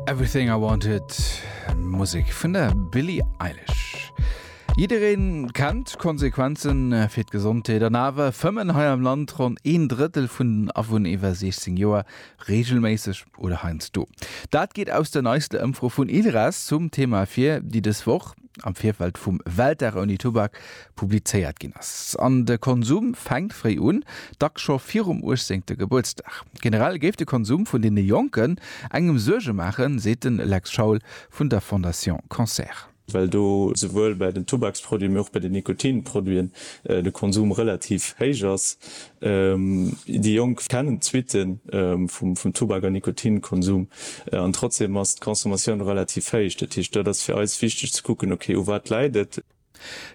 Everything I Wanted, Musik vun der Billie Eilish. Jiddereen kennt Konsequenzen äh, fir d'Gesondheet an awer fëmmen hei am Land ronn een Drëttel vun den Awunn iwwer 16 Joer reegelméisseg oder heiansdo. Dat geet aus der neiste Ëmfro vun ILRES zum Thema vir, déi dës Woch am Virfeld vum Weltdag ouni Tubak publizéiert ginn ass. An de Konsum fänkt fréi un, dacks scho virum uechtzéngte Gebuertsdag. Generell géif de Konsum vun deene Jonken engem Suerge maachen, seet de Lex Schaul vun der Fondation Cancer. Well do souwuel bei den Tubaksproduite mee och bei den Nikotinproduiten de Konsum relativ héich ass, Déi Jonk kennen d'Suitte vum Tubak a Nikotinkonsum an trotzdeem ass d'Consommatioun relativ héich. Dat heescht, dat ass fir eis wichteg ze kucken, ok, u wat läit et?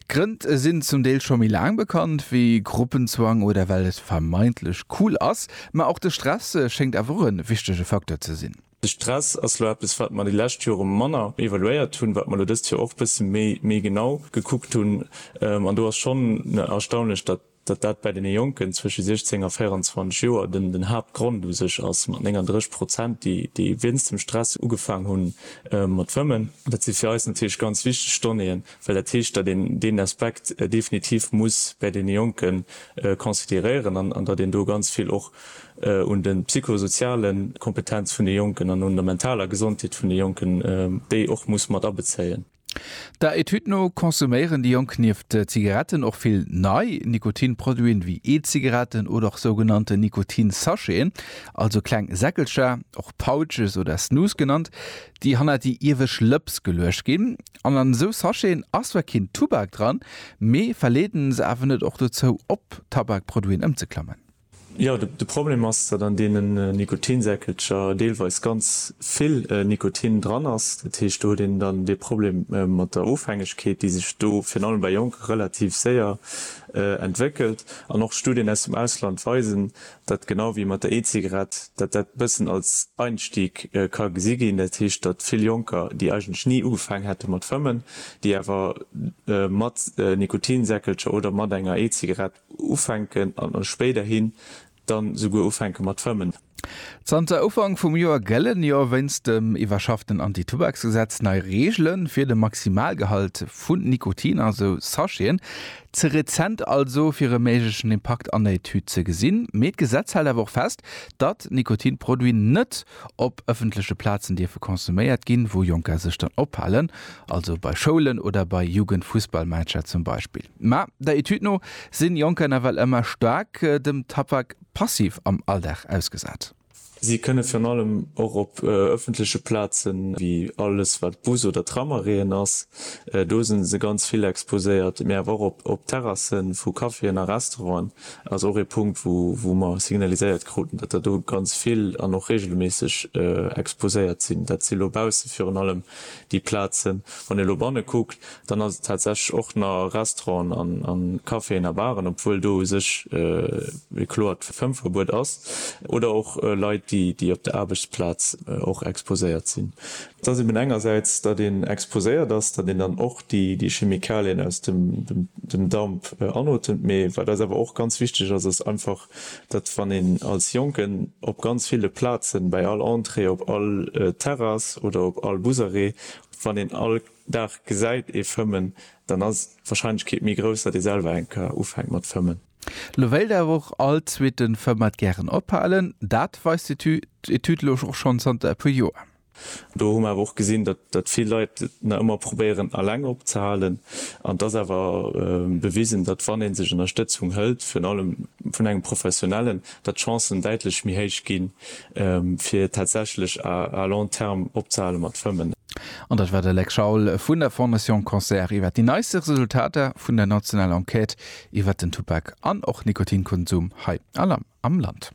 D'Grënn sinn zum Deel scho méi laang bekannt wéi Gruppenzwang oder well et vermeintlech cool ass. Ma och de Stress schéngt awer e wichtege Facteur ze sinn. De Stress ass elo eppes, wat mer déi lescht Jore manner evaluéiert hunn, wat mer elo dëst Joer och e bësse méi genau gekuckt hunn. An do ass schonn erstaunlech, datt Datt dat bäi deene Jonken zwësche 16 a 24 Joer den Haaptgrond u sech ass, mat 39 Prozent, déi wéinst dem Stress ugefaang hu mat fëmmen, dat si fir eis natierlech ganz wichteg Donnéeën, well dat heescht, datt een deen Aspekt definitiv muss bäi deene Jonke consideréieren an datt een do ganz vill och un de psychosoziale Kompetenze vun de Jonken an un der mentaler Gesondheet vun de Jonken, déi och muss mat abezéien. Der Etüd no konsuméieren déi Jonk nieft Zigaretten och vill nei Nikotinproduiten, wéi E-Zigaretten oder och sougenannten Nikotin-Sacheten, also kleng Säckelcher, och Pouches oder Snus genannt, déi hannert déi iewescht Lëps geluecht ginn. An an esou Sacheten ass zwar keen Tubak dran, mee verleeden se awer net och dozou, op Tabakproduiten ëmzeklammen? Jo, de Problem ass, datt an deenen Nikotinsäckelcher deelweis ganz vill Nikotin dran ass. Dat heescht, do huet een dann dee Problem mat der Ofhängegkeet, déi sech do virun allem bei Jonke relativ séier entwéckelt. An och Studien aus dem Ausland weisen, datt genau wéi mat der E-Zigarett, datt dat e bëssen als Einstieg ka gesi ginn. Dat heescht, datt vill Jonker, déi eigentlech ni ugefaang hätte mat fëmmen, déi awer mat Nikotinsäckelcher oder mat enger E-Zigarett Ufänken an spéiderhin dann esouguer ufänken mat fëmmen. Zanter Ufank vum Joer gëllen jo wéinst dem iwwerschafften Antitubaksgesetz nei Reegele fir de Maximalgehalt vu Nikotin a sou Sacheten. Ze rezent also fir e méiglechen Impakt an der Etüd ze gesinn. Mee d'Gesetz hält awer och fest, datt Nikotinproduiten net op ëffentleche Plazen dierfe konsuméiert ginn, wou Jonker sech dann ophalen, also bei Schoulen oder bei Jugendfussballmatcher zum Beispill. Ma der Etüd no sinn Jonker nawell ëmmer staark dem Tabak passiv am Alldag ausgesat. Si kënne virun allem och op ëffentleche Plazen, wéi alles wat Bus oder Tramarrêten ass, do sinn se ganz vill exposéiert, mee awer och op Terrasse vu Caféen a Restauranten, ass och ee Punkt wou mer signaliséiert kruten, datt der do ganz vill an och reegelméisseg exposéiert sinn. Dat si lo bausse virun allem déi Plazen. Wann ee lo banne kuckt, Dann ass et tatsächlech och na Restauranten a Caféen a Baren, obwuel do u sech e kloert Fëmmverbuet ass, oder och Leit, déi op der Aarbechtsplaz och exposéiert sinn. Et ass eben engersäits, datt een exposéiert ass, datt een dann och déi Chemikalien aus dem Damp anotemt, mee wat eis awer och ganz wichteg ass, ass einfach, datt wann een als Jonken op ganz ville Plazen, bäi all Entrée, op all Terrass oder op all Busarrêt, wann een all. Dag gesäit ee fëmmen, dann ass d'Warscheinlechkeet méi grouss, datt ee selwer eng Kar ufänkt mat fëmmen. Lo wéilt awer och all zweeten Fëmmer gären ophalen. Dat weist d'Etüd elo och schonn zanter e puer Joer. Do hu mer awer och gesinn, datt vill Leit et nach ëmmer probéieren eleng opzehalen. An et ass awer bewisen, datt wann ee sech Ënnerstëtzung hëlt, virun allem vun engem Professionellen, datt d'Chancen däitlech méi héich ginn, fir tatsächlech à long terme opzehale mat Fëmmen. An dat war de Lex Schaul vun der Fondation Cancer iwwer déi neiste Resultater vun der nationaler Enquête iwwer den Tubak an och Nikotinkonsum hei am Land.